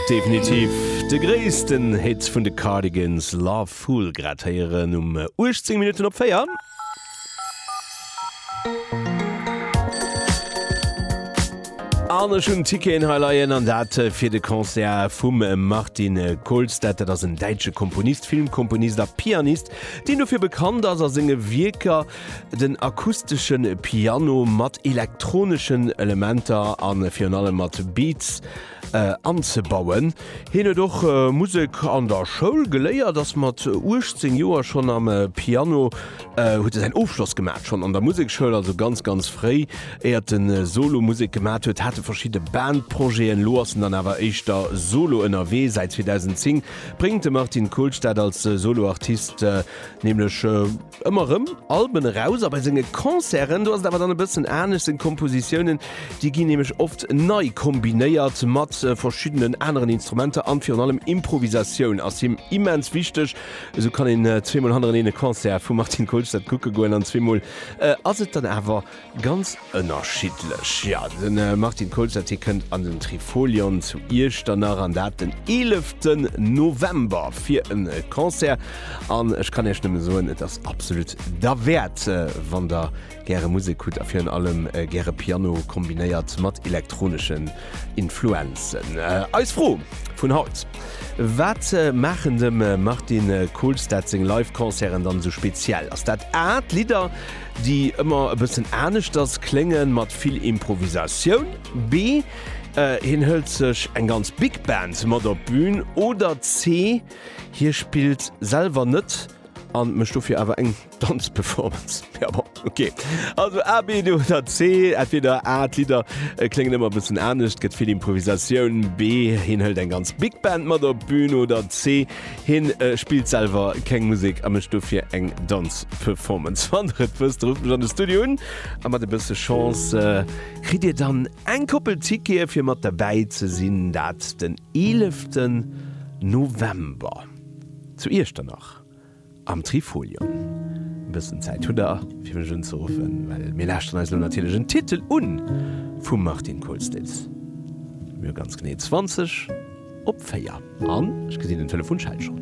Definitiv de gréissten Hit vun de Cardigans, Love Fool, grad héieren um 18 Minutten op 4. An ech hunn Ticketen hei leien, an dat fir de Concert vum Martin Kolstad. Dat ass en däitsche Komponist, Filmkomponist a Pianist, deen dofir bekannt ass, a senge Wierker Den akustesche Piano mat elektroneschen Elementer a virun allem mat Beats anzebauen. Hien huet och Musek an der Schoul geléiert, ass mat 18 Joer schonn am Piano, huet e säin Ofschloss gemaach schonn an der Musekschoul, also ganz ganz fréi, éiert en Solo Musek gemaach huet, hat e verschidde Bandprojeten. Elo ass en dann awer éischter solo ënnerwee. Säit 2010 bréngt de Martin Kohlstedt als Solo Artist Nämlech ëmmer rëm Alben eraus, a bei senge Concerten, do ass et awer dann e bëssen anescht, seng Kompositiounen, déi ginn nämlech oft nei kombinéiert mat verschiddenen aneren Instrumenter an virun allem Improvisatioun ass him immens wichteg. Esou kann een zweemol hannereneen e Concert vum Martin Kolstad kucke goen an zweemol ass et dann awer Ganz ënnerschiddlech, jo. De Martin Koeltz, hie kënnt an den Trifolion zu Iechternach, an dat den 11 November fir e Concert. An ech kann Iech nëmme soen, et ass absolut derwäert, wann Der gäre Musek hutt a virun allem gäre Piano kombinéiert mat elektroneschen Influenzen. Eis Fro vun haut, Wat maachen dem Martin Koeltz dat seng Live-Concerten dann esou speziell? Ass dat A, d'Lidder, déi ëmmer e bëssen aneschters kléngen, mat vill Improvisatioun, B, Hien hëlt sech eng ganz Big Band mat op d'Bün, oder C, Hie spillt selwer net a mécht dofir awer eng Danzperformance. Ja bon, ok. Also A, B, D oder C. Entweder A, D'Lidder kléngen ëmmer e bëssen anescht, gëtt vill Improvisatioun, B, Hien hëlt eng ganz Big Band mat op d'Bün, oder C, Hien spillt selwer keng Musek a mécht dofir eng Danzperformance. Wann der et wësst, rufft mech an de Studio un a mat e bësse Chance kritt dir dann eng Koppel Tickete fir mat derbäi ze sinn, dat den 11 November zu Iechternach Am Trifolion. E bëssen Zäit hutt der, fir mech unzeruffen, well mir lauschteren eis elo natierlech en Titel un vum Martin Kohlstedt. Mir hu ganz genee 20 op 4 an ech gesinn den Telefonschell schonn.